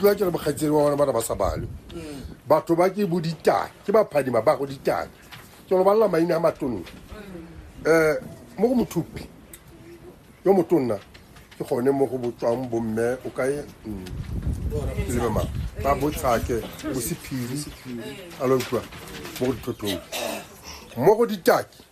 tlwa ke re bokgaitsedi ba bona ba re ba sa balwe batho ba ke bo ditala ke ba phadima ba go ditala ke lo balela maina a matonne um mo go mothupi yo motonna ke gone mo go botswang bomme o kae mm, ke lebe mang ba botshake bosephiri a lo utlwa mo go dithothong mo go ditaki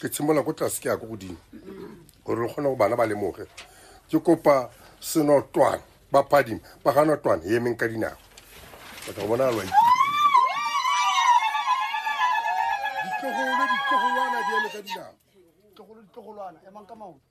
ke tshimolola ko tlase ke ya ko godimo gore re kgone go bana ba lemoge ke kopa senotwane ba phadima ba ga notwane e emeng ka dinako o tla go bona alwa ditlogolo ditlogolwana di eme ka dinako ditlogolo ditlogolwana emang ka maoto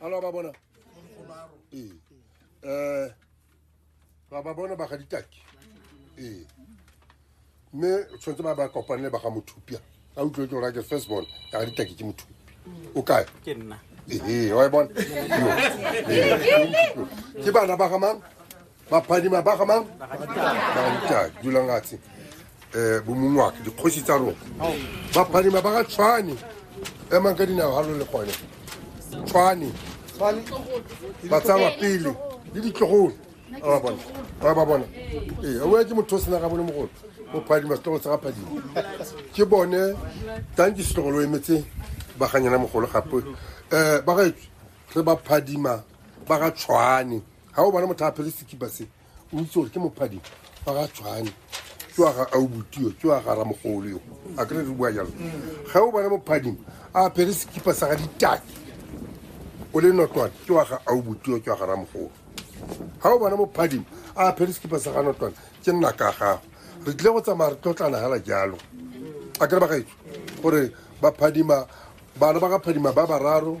alo ba bona ee um ba ba bona ba ga ditaki ee mme tshwanetse ba ba kopanele ba ga mothupia a utlwe ke orake first born ka ga ditaki ke mothupi o kae ke nna ee wa e bona ke bana ba ga mang baphadima ba gamang bagaditadi dulang atshe um eh, bomongwake dikgosi tsa rona baphadima ba ga tshwane emang ka dinao ga lo le gone tshwane ba tsawa pele le ditlogolo ba bona ba ba bona ee o ke motho o sena ga bone mogolo o phadima setlogo sa ga phadima ke bone tang ke setlogolo emetse ba ganyana mogolo gape um ba gaetswe re ba phadima ba ga tshwane ga o bane motho a phele sekipa se o itse gore ke mophadi fa ga tshwane ke wa ga aubutio ke wa ga ramogolo yo a kere re bua jalo ga o bane mophading a phele sekipa sa ga ditaki o le notwane ke wa ga aubutio ke wa ga ramogolo ga o bane mophading a phele sekipa sa ga notwane ke nna ka gago re tlile go tsamaya re tlotlana fela jalo a kere ba gaetso gore baphadima bana ba ga phadima ba bararo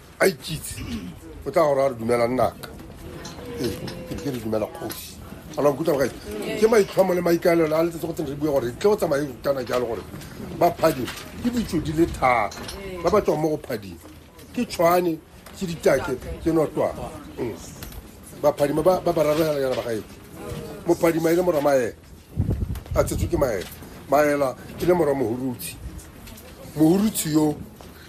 a ikitse o tla gore a re dumela nnaka ee ke ke re dumela kgosi ana nkutlwa gae ke maitlhomo le maikaelelo a letsetse go tsene re bue gore tle go tsamaye kana jalo gore ba phading ke ditso di le thata ba ba tswang mo go phading ke tshwane ke ditake ke notwana Mm. baphadima ba ba bararoganyana ba gaetse mophadima e le mora maela a tsetswe ke maela maela e le mora mohurutshe mohurutshe yo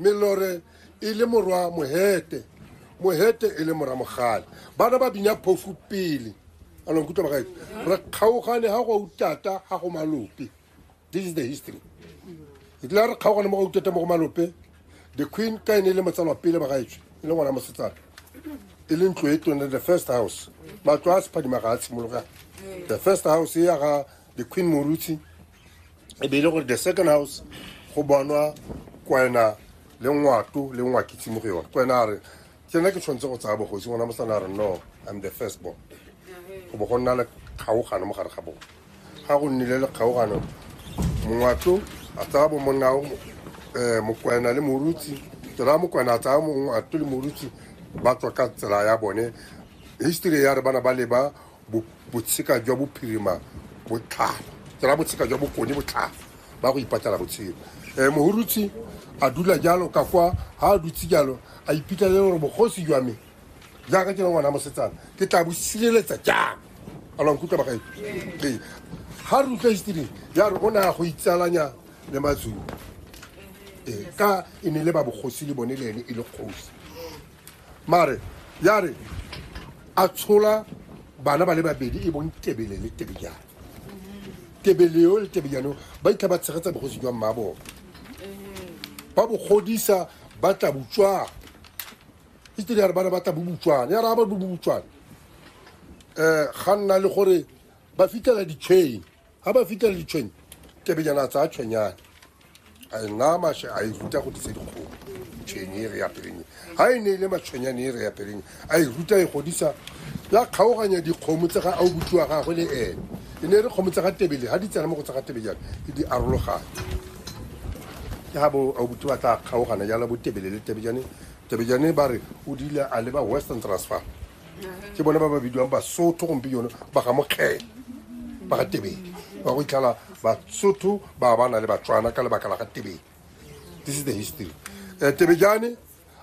melore e le morwa mohete mohete e le mora mogale bana ba binya phofu pele along kutlwa ba gaetse re kgaogane ga go utata ga go malope this is the history e tlile re kgaogane mo go utata mo go malope the queen ka e ne e le motsalwa pele ba gaetswe e le ngwana mosetsana e le ntlo e tone the first house matlo a sephadima ga a tshimologa the first house e ya ga the queen morutshe e be e le gore the second house go bonwa kwena le ngwato le ngwakitse mo go yone kwena a re ke nna ke tshwanetse go tsaya bogosi ngwana mosana a re no i'm the first born go bo go nna le kgaogano mo gare ga bone ga go nnile le kgaogano mongwato a tsaya bomonna um eh, mokwena le morutsi tsela mokwena a tsaya mongwato le morutsi ba tswa ka tsela ya bone history ya re bana ba leba botsheka jwa bophirima botlhalo tsela botsheka jwa bokone botlhalo ba go ipatela botshelo um eh, mohurutsi a dula jalo ka kwa ga a dutse jalo a iphitlhelele gore bogosi jwa me jaaka ke le ngwana mosetsana ke tla bo sireletsa jang a lwa nkutlwa bagae ee ga re utlwa history ya re o ne ya go itsalanya le mazulu ee ka e ne le ba bogosi le bone le ene e le kgosi mare ya re a tshola bana ba le babedi e bong tebele le tebejane tebele yo le tebejane ba itlha ba tshegetsa bogosi jwa mma bone ba bogodisa ba tla botswana history ya re bana ba tla bobotswana ya re ga ba bobotswana um ga nna le gore ba fitlhela di-chain ga ba fitlhela ditshwenya kebenyana tsaya tshwenyane a e naya mashe a e ruta go disa dikgomo tshwenye e re ya peleng ga e ne e le matshwenyane e re ya peleng a e ruta e godisa ya kgaoganya dikgomo tse ga a o botsiwa gagwe le ene e ne e re kgomo tse ga tebele ga di tsena mo go tse ga tebejana e di arologane ke ga bo a o botsi ba tla kgaogana jala bo tebele le tebejane tebejane ba re o dile a leba western transfer ke bone ba ba bidiwang basotho gompieno ba ga mokgele ba ga tebele ba go itlhala basotho ba ba na le batswana ka lebaka la ga tebele this is the history um tebejane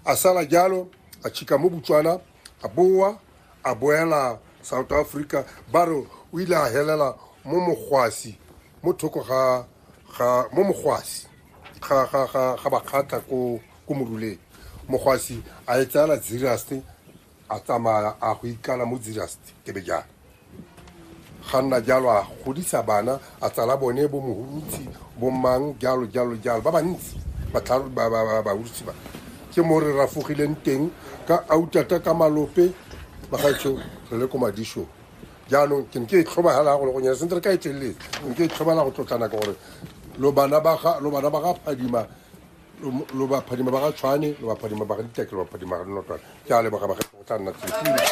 a sala jalo a chika mo botswana a boa a boela south africa ba re o ile a helela mo mogwasi mo thoko ga ga mo mogwasi ga ga ga ga bakgatla ko ko moruleng mogwasi a e tsala zirasti a tsamaya a go ikala mo zirasti ke be jalo ga nna jalo a godisa bana a tsala bone bo mohurutsi bo mang jalo jalo jalo ba bantsi batlharo- ba- ba- ba- bahurutsi ba ke mo re rafogileng teng ka autata ka malope bagaetsho re le ko madishong jaanong ke ne ke e tlhobagala go le go nyana sentle ka e telele ne ke e tlhobala go tlotlana ka gore lo bana ba ga lo bana ba ga phadima lo- lo ba phadima ba ga tshwane lo ba phadima ba ga diteke lo ba phadima ga dinotwana ke a leboga ba ga go tla nna tsefile